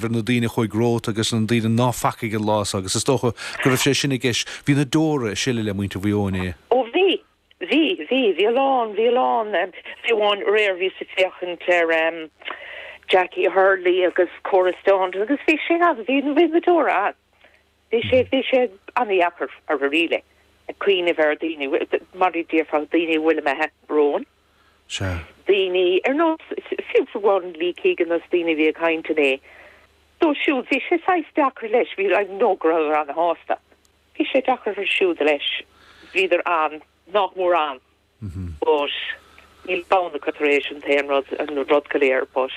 ar na daoine a chuaidh romhat agus na daoine ná facaigh an lá so agus is dócha go raibh sé sin i gceist. Bhí na deóra ag sileadh le muintir Mhaigh Eo inné. Ó bhí, bhí, bhí, bhí a lán, bhí a lán em, fiú amháin aréir bhíos ag féachaint ar em Jacqui Hurley agus Cora Staunton agus bhí sé ann, bhí na deóra ann. Bhí sé, bhí sé an-dheacair dáiríre ag cuimhneamh ar daoine, mar a déarfá, daoine a bhfuil imithe romhainn, Sea. daoine ar nós, fiú amháin, Lee Keegan agus daoine a bhí ag caint inné. Dóibh siúd bhí sé saghas deacair leis, bhí, I know go rabhadar an-shásta. Bhí sé deacair orthu siúd leis, bhíodar an, nách mór ann. But níl bonn acu tar éis an t-aon rud, an rud go léir but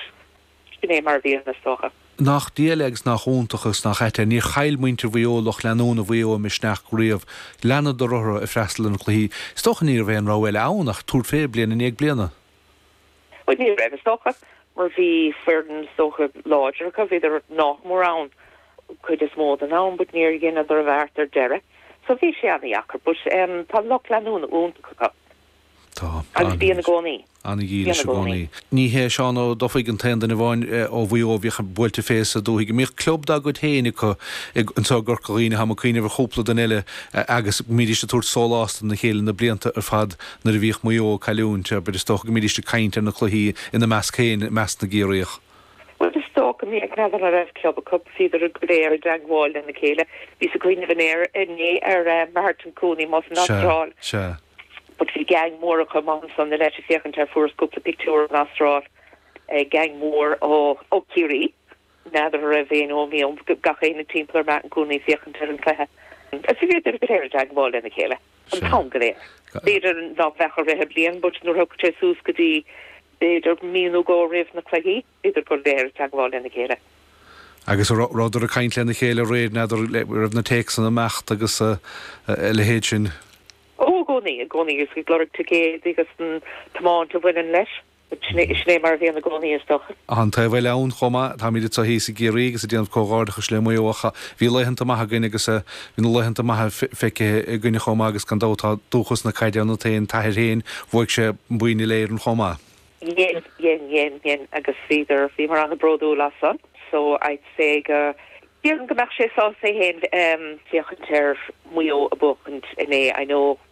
sin é mar a bhíonn is dócha. Nach diail é agus nach iontach agus nach ait é. Níor chaill muintir Mhaigh Eo, lucht leanúna Mhaigh Eo, a misneach riamh. Leanadar orthu ag freastal ar na cluichí. Is dócha ní raibh aon rogha eile ann ach tabhairt fé, bliain i ndiaidh bliana. Bhuel, ní raibh, is dócha, mar bhí foireann, is dócha, láidir acu. Bhíodar nách mór ann cuid is mó den am but níor dheineadar an beart ar deireadh so bhí sé ana-dheacair but tá lucht leanúna iontach acu. Tá. Agus bíonn i gcónaí. Ana-dhílis i gcónaí. Ní hé Seán Ó Dufaigh an t-aon duine amháin ó Mhaigh Eo a bhíodh buailte fé sa dúthaigh. An mbíodh club dá gcuid féin acu anseo i gCorca Dhuibhne? Tá mé ag cuimhneamh ar chúpla duine eile agus bhídís ag tabhairt sólás dona chéile na blianta ar fad Nuair a bhíodh Maigh Eo ag cailliúint, ar bith, is dócha go mbídíst ag caint ar na cluichí ina measc féin, i measc na gCiarraíoch. Bhuel, is dócha, n'fheadar an raibh club acu, bhíodar go léir i dteangmháil lena chéile. Bhíos ag cuimhneamh inné ar, inné ar eh, Martin Cooney, amuigh san Astráil, sea. but bhí gang mór acu, amach ansan, leis ag féachaint ar, fuaireas cúpla pictiúr ón Astráil, eh, gang mór ó, ó Chiarraí. N'fheadar a raibh éinne ó Mhaigh Eo ann, gach éinne timpeall ar Martin Cooney ag féachaint ar an chluiche. Sea, bhíodar go léir i dteagmháil lena chéile an t-am go léir. B'fhéidir ná beadh i rith na bliana but nuair a thagadh sé suas go dtí b'fhéidir mí nó dhó roimh na cluichí, bhíodar go léir i dteagmháil lena chéile. Agus a' rabhadar ag caint lena chéile aréir, n'fheadar, raibh na téacsanna ag imeacht agus a leithéid sin? Ó, i gcónaí, i gcónaí, agus ag lorg ticéidí agus an tiomáint a bhaineann leis. Sin é mar a bhíonn i gcónaí, is dócha. Tá an taobh eile ann chomh maith. Táimíd anseo thíos i gCiarraí agus ag déanamh comhghairdeachais le Maigh Eo ach bhí laethanta maithe againne agus bhí na laethanta maithe feicthe againne chomh maith agus gan dabht tá dúchas na caide ionat féin. T'athair féin, bhuaigh sé boinn Uile-Éireann chomh maith. Dhein, dhein, dhein, dhein agus bhíodar, bhíomar ana-bródúil as san so I'd say go, déarfainn go mbeadh sé sásta é féin ag féachaint ar Maigh Eo ag buachaint inné. I know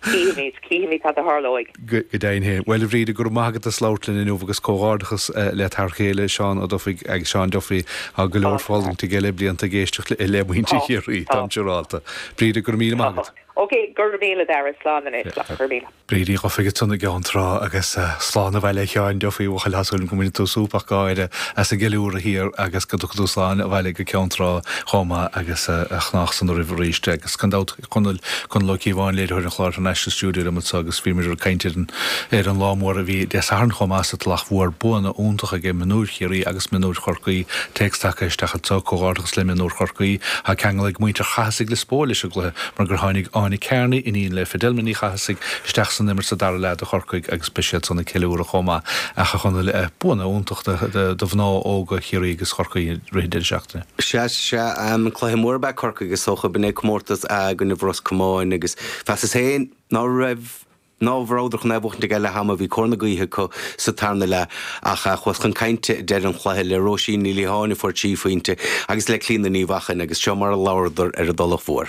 Cífimid, cífimid, cad a tharlóidh. Go deimhin féin. Bhuel, a Bhríde, go raibh maith agat as labhairt linn inniu agus comhghairdeachas le t'fhear chéile, Seán Ó Dufaigh, ag Seán Duffy, tá go leor fulaingthe aige le blianta ag éisteacht le muintir Chiarraí, táim siúrálta. Bríde, go raibh míle maith agat. Tá. Ok, go raibh míle, Darragh. Slán anois. Slán. Go raibh míle. Bríde Duffy ansan i gCeann Trá agus slán abhaile a Sheáin Duffy, a bhuachaill, tá súil agam go mbaineann tú súp agus gáire as an gceiliúradh thiar agus go dtiocfaidh tú slán abhaile go Ceann Trá chomh maith agus a chnámh san ariamh arís agus gan dabht Conaill, Conall Ó Cíobháin, léiritheoir an chláir International Studio liom anseo agus bhí muid ag caint ar an, ar an lá mór a bhí Dé Sathairn chomh maith sa Tulach Mhór, buanna iontacha aige, mionúir Chiarraí agus mionúir Chorcaí, téacs tagtha isteach anseo, comhghairdeachas le mionúir Chorcaí, tá ceangal ag muintir Chathasaigh le Spóil leis an gcluiche mar gur tháinig Áine Kearney, iníon le Fidelma Ní Chathasaigh, isteach san imirt sa dara leath do Chorcaigh agus beidh siad san ag ceiliúradh chomh maith. Ach a Chonaill, buanna iontacha do mhná óga Chiarraí agus Chorcaí i rith an deireadh seachtaine. Sea, sea, an cluiche mór ab ea Corcaigh is dócha. B'in é comórtas A i gcoinnibh Ros Comáin agus mheasas féin ná raibh, ná rabhadar chun é a bhuachtaint ag leath ama. Bhí cóir na gaoithe acu sa tarna leath ach chuas chun cainte deireadh an chluiche le Róisín Ní Liatháin a fuair trí phointe agus le Clíodhna Ní Mhacháin agus seo mar a labharadar ar an dTulach Mhór.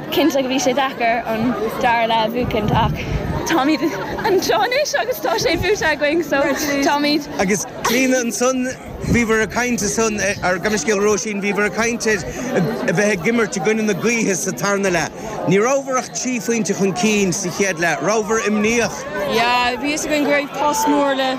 Cinnte go bhí sé deacair an dara leath a bhuachaint ach táimíd anseo anois agus tá sé buaite againn so táimíd. Agus Clíodhna ansan bhíobhar ag caint ansan ar, gabh mo leithscéal, Róisín, bhíobhar ag caint ar a bheith ag imirt i gcoinne na gaoithe sa tarna leath. Ní rabhar ach trí phointe chun cinn sa chéad leath. Rabhar imníoch. Yeah, bhí fhios againn go raibh post mór le.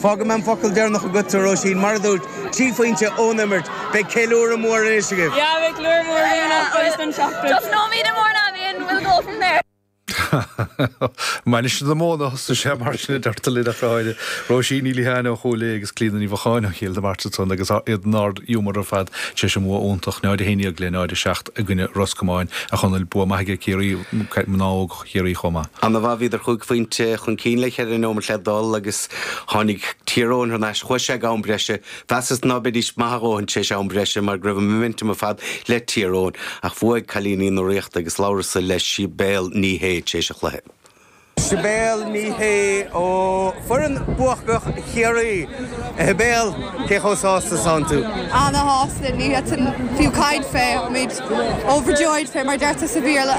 Fágfaidh mé an focal deireanach agatsa, a Róisín. Mar a dúirt, trí phointe ón imirt. Beidh ceiliúradh mór anois agaibh. Yeah, beidh ceiliúradh mór againn as baile don Teachta. Just homecoming in Mourneabbey and we'll go from there. Mainistir na Móna a thosóidh sé mar sin, a deirtear linn, ach táid Róisín Ní Liatháin ó Chúil Aodha agus Clíodhna Ní Mhacháin ó Chill na Martra ansan agus iad in ard-ghiúmar ar fad tar éis a mbua iontach, 0-11 le 0-7 i gcoinne Ros Comáin, a Chonaill. Bua maith aige Ciarraí, mná óga. Chiarraí chomh maith. Ana-mhaith, bhíodar chúig phointe chun cinn le ceithre nóimeat le dul agus tháinig Tír Eoghain thar n-ais chucu ag am breise. Mheasas ná beidís maith a dhóthain tar éis am breise mar go raibh an momentum ar fad le Tír Eoghain. Ach bhuaigh cailíní na Ríochta agus labhras-sa le Sibéal Ní Shé tar éis an chluiche. Sibéal Ní Shé ó foireann buacach Chiarraí. A Shibéal, cé chomh sásta 's atánn tú? Ana-shásta, ní fhéadfainn fiú caint fé. Táimid. Overjoyed, fé mar a deirtear sa Bhéarla.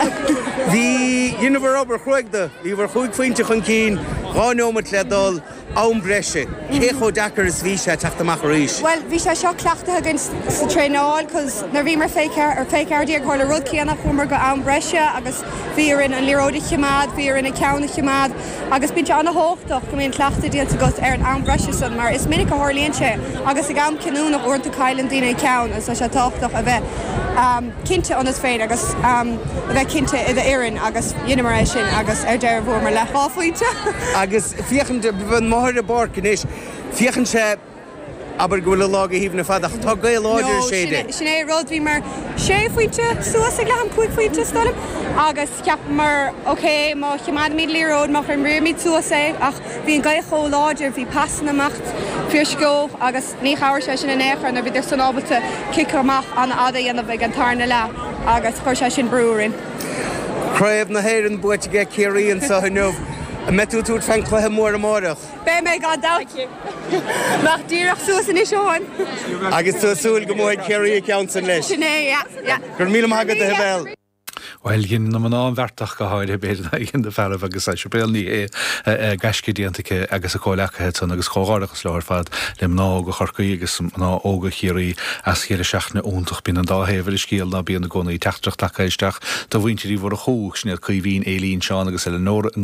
Bhí dheineamar obair chruaidh dó. Bhíobhar chúig phointe chun cinn, dhá neomat le dul, am breise. Cé chomh deacair is bhí sé teacht amach arís? Bhuel, bhí sé seo cleachtaithe againn sa traenáil cos nuair a bhíomar fé ceathair déag tharla an rud céanna chuamar go am breise agus bhí orainn an liathróid a chimeád, bhí orainn ár gceann a chimeád. Agus bíonn sé ana-thábhachtach go mbíonn cleachtadh déanta agat ar an am breise san mar is minic a thárlaíonn sé agus ag am cinniúnach uaireanta cailleann daoine an ceann agus tá sé tábhachtach a bheith cinnte ionat féin agus a bheith cinnte i do fhoireann agus dheineamar é sin agus ar deireadh bhuamar le dhá phointe. Agus féachaint amach ar an bpáirc anois, féachann sé. Abair go bhfuil an lá go haoibhinn ar fad ach tá gaoth láidir No, is é sin, sin é rud, bhíomar sé phointe suas ag leath-am, cúig phointe is dóigh liom agus cheapamar ok má chimeádaimíd liathróid, má imríomid suas é ach bhí an gaoth chomh láidir, bhí pasanna amach fiarsceabha agus ní chabhair sé sin in aon chor nuair bhíodar san ábalta cic amach ana fhada a dhéanamh ag an tarna leath agus chuir sé sin brú orainn. Craobh na hÉireann buaite aige Ciarraí anseo inniu. An mbeidh tú ag tabhairt fén gcluiche mór amáireach? Beidh mé gan dabht. Nach díreach suas anois ó shoin. Agus tú ag súil go mbuafaidh Ciarraí an ceann sin leis? Sin é, yeah, yeah. Go raibh míle maith agat, a Shibéal. Bhuel, dhein na mná an bheart, ach go háirithe, b'fhéidir, nár dhein na fearaibh agus tá Sibéal Ní Shé, gaisce déanta aici agus a comhleacaithe san agus comhghairdeachas leo ar fad le mná óga Chorcaí agus mná óga Chiarraí as deireadh seachtaine iontach. Bíonn an dá thaobh ar an scéal, ná bíonn i gcónaí teachtaireacht tagtha isteach do mhuintir Uí Mhurchú, Sinéad, Caoimhín, Eilín, Seán agus Eileanóra i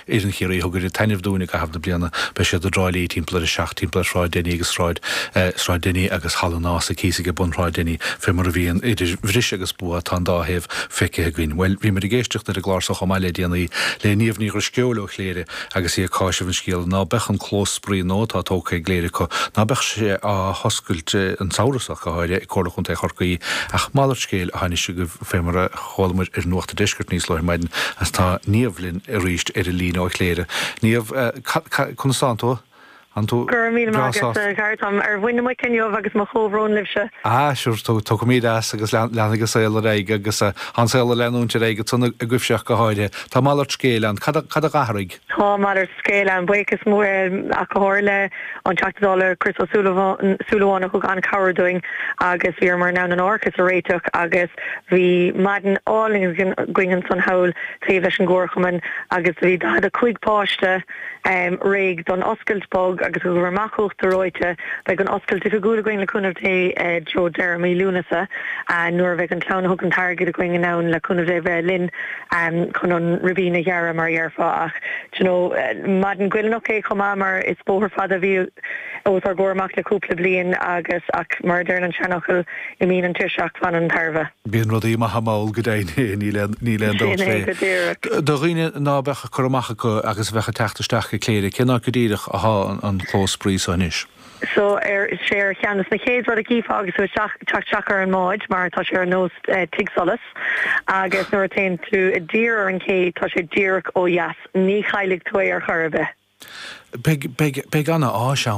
Foireann Chiarraí a thug oiread taitnimh dúinn i gcaitheamh na bliana. Beidh siad i dTrá Lí timpeall ar a seacht timpeall ar Shráid Denny agus Sráid Sráid Denny agus Halla an Ághasaigh thíos age bun Shráid Denny. Fé mar a bhíonn idir bhris agus bua tá an dá thaobh feicthe againn. Bhuel, bhíomar ag éisteacht ar an gclár so chomh maith le déanaí le Niamh Ní Dhrisceoil ó Chléire agus í ag cáiseamh an scéala ná beadh an clós spraoi nua atá tógtha i gCléire acu ná beadh sé á hoscailt an samhradh so go háirithe ag Comhairle Chontae Chorcaí ach malairt scéil athá anois agaibh fé mar a Chualamar ar Nuacht a' Deiscirt níos luaithe ar maidin agus tá Niamh linn arís ar an líne ó Chléire. Niamh, conas tánn tú? An tú Go raibh míle maith breá agat, a sásta? Dhara, táim ar mhuin na muice inniu agus mo chomhbhrón libhse. Ah, sure, tiocfaimíd as agus leanfaidh an saol ar aghaidh agus tá an saol ag leanúint ar aghaidh agatsa agaibhse ach go háirithe. Tá malairt scéil ann. Cad a d'athraigh? Tá malairt scéil ann, buíochas mór ar a Chomhairle, an Teachta Dála Chris Ó Súilleabháin a thug an-chabhair dúinn agus bhíomar in ann an árachas a réiteach agus bhí maidin álainn againn ansan thall taobh leis an gComharchumann agus bhí 45 páiste réidh don oscailt bog agus thugamar amach uachtar reoite. Beidh an oscailt oifigiúil againn le cúnamh Dé i dtreo deireadh mí Lúnasa nuair a bheidh an clann a thug an t-airgead againn in ann le cúnamh Dé bheith linn. chun an ribín a ghearradh mar a dhéarfá ach d'you know maidin ghoilliúnach é chomh maith mar is bóthar fada a bhí os ár gcomhair amach le cúpla bliain agus ach mar a deireann an seanfhocal imíonn an tuirse ach fanann an tairbhe. Bíonn rudaí maithe mall go deimhin é níl aon níl aon dabht fé. Sin é go díreach. Do dhaoine ná beadh cur amach acu agus a bheadh ag teacht isteach go Cléire cén áit go díreach athá an clós spraoi so anois? so tá sé ar cheann de na chéad rud a chífeá agus tú a' teacht isteach ar an mbád mar tá sé ar nós tig solais agus nuair a théann tú i dtír ar an gcé tá sé díreach ó dheas ní chaillfidh tú é ar chor ar bith. Beidh, beidh, beidh ana áis ann.